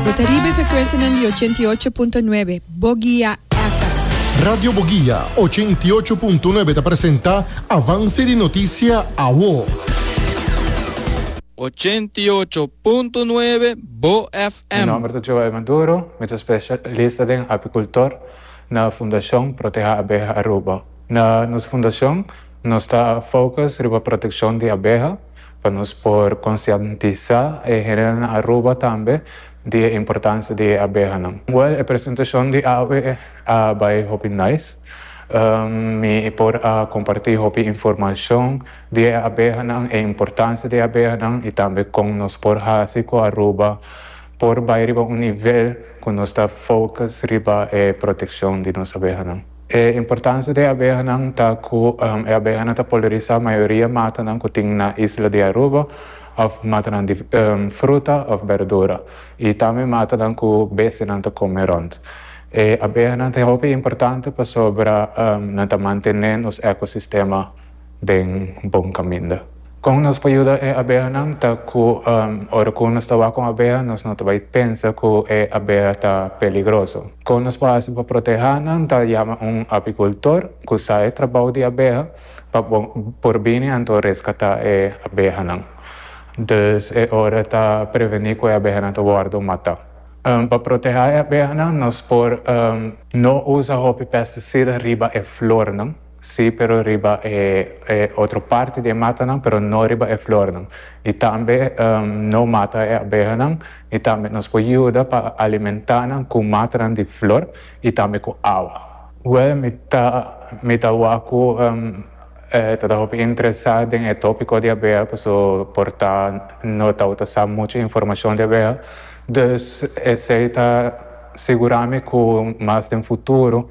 Bo ta riba e frekuensianan di ochenta i ocho punto nuebe Bogia FM. Radio Bogia ochenta i ocho punto nuebe ta presenta Avance di Noticia Awo. Ochenta i ocho punto nuebe Bo Mi FM. nomber ta Joel Maduro, mi ta specialista den apicultor na Fundacion Proteha Abeha Aruba. Na nos fundacion nos ta focus riba proteccion di abeha. pa nos por konsientisá e hende na Aruba tambe di e importansia di e abehanan. Wèl, e presentashon di awe a bai hopi nice. Mi por a kompartí hopi informashon di e abehanan, e importansia di e abehanan i tambe kon nos por hasi ku Aruba por bai riba un nivel ku nos ta fokus riba e protekshon di nos abehanan. E importancia di e abehanan ta cu e abehanan ta polinisa mayoria matanan cu tin na isla di Aruba of matanan di fruta of berdura y tambe matanan cu bestianan ta come rond. E abehanan ta hopi importante pasobra nan ta mantene nos ecosistema. den bon kaminda. Kon nos por yuda e abehanan ta ku ora ku nos ta wak un abeha nos no ta bai pensa ku e abeha ta peligroso. Kon nos por hasi pa protehá nan ta yama un apikultor ku sa e trabou di abeha pa por bini anto reskatá e abehanan. Dus e ora ta prevení ku e abehanan ta wòrdu matá. Pa protehá e abehanan nos por no usa hopi pestisida riba e flornan. Sí, pero riba e e otro parti di e matanan, pero no riba e flornan. Di tambe no mata e abehanan, di tambe nos por yuda pa alimentá nan ku matanan di flor i tambe ku awa. Wèl, mi ta mi ta wak ku e ta hopi interesá den e tópiko di abeha, paso por ta no tawata sa muchu informashon di abeha. Dus esei ta sigurá mi ku mas den futuro